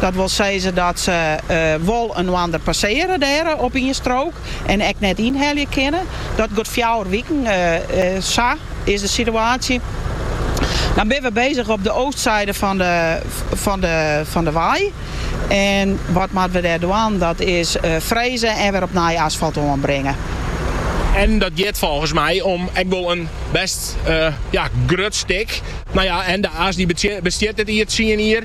Dat wol sizze dat se wol inoarder passearje dêr op ien strook en ek net ynhelje kinne. Dat got fjouwer wiken. Sa is de situaasje. Dan binne we bezich op de oostside fan de wei. En wat moatte we dêr dwaan? Dat is freze en wer op nij asfalt oanbringe. En dat giet folgens my om ek wol in bêst grut stik. No ja, en De As dy bestiet dit jier tsien jier.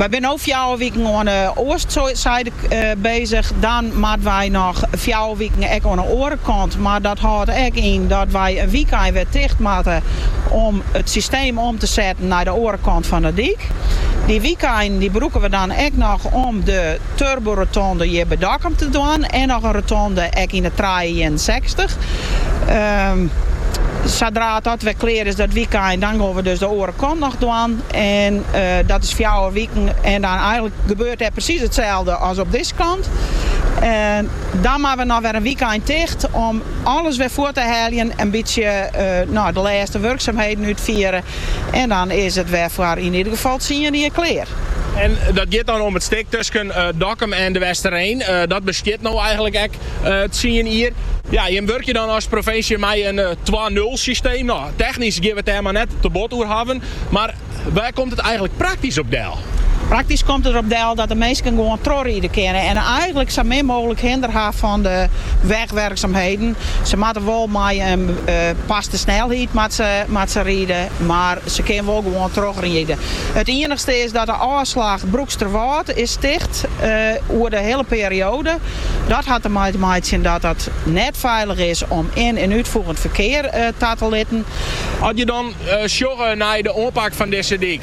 Wy binne no fjouwer wiken oan 'e oastsyde bezich. Dan moatte wy noch fjouwer wiken ek oan 'e oare kant. Mar dat hâldt ek yn dat wy in wykein wer ticht moatte om it systeem om te setten nei de oare kant fan 'e dyk. Dy wykeinen brûke we dan ek noch om de Turbo-rotonde hjir by Dokkum te dwaan en noch in rotonde ek yn de trije ienensechstich. Sadra dat wer klear is dat wykein, dan gon we dus de oare kant noch dwaan. En dat is fjouwer wiken en dan eigenlik gebeurt dêr presys itselde as op dizze kant. En dan moatte we noch wer in wykein ticht om alles wer fuort te heljen, in bytsje de lêste wurksumheden útfiere En dan is it wer foar yn ieder gefal tsien jier klear. En dat giet dan om it stik tusken Dokkum en De Westereen. Dat bestiet no eigenlik ek tsien jier. Ja, jim wurkje dan as provinsje mei in twa-nul-systeem. No, technysk gean we it dêr mar net te bot oer hawwen. Mar wêr komt it eigenlik praktysk op del? Praktysk komt it der op del dat de minsken gewoan trochriede kinne en eigenlik sa min mooglik hinder ha fan de wegwerksumheden. Se moatte wol mei oanpaste snelheid moat se ride, mar se kinne wol gewoan trochriede. It iennichste is dat de ôfslach Broeksterwâld is ticht oer de hiele perioade. Dat hat der mei te meitsjen dat it net feilich is om yn- en útfoegend ferkear ta te litten. As je dan sjogge nei de oanpak fan dizze dyk.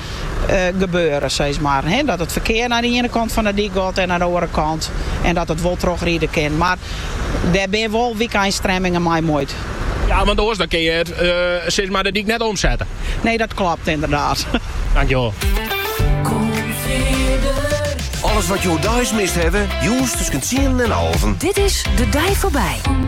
gebeure, seiz mar. Dat it ferkear nei de iene kant fan de dyk got en nei de oare kant en dat it wol trochride kin. Mar dêr binne wol wykein-stremmingen mei muoid. Ja, want oars dan kin je it, seiz mar, de dyk net omsette. Nee, dat klopt ynderdaad. Dankjewol. Alles wat jo deis mist hawwe, jûns tusken tsienen en alven. Dit is De Dei Foarby.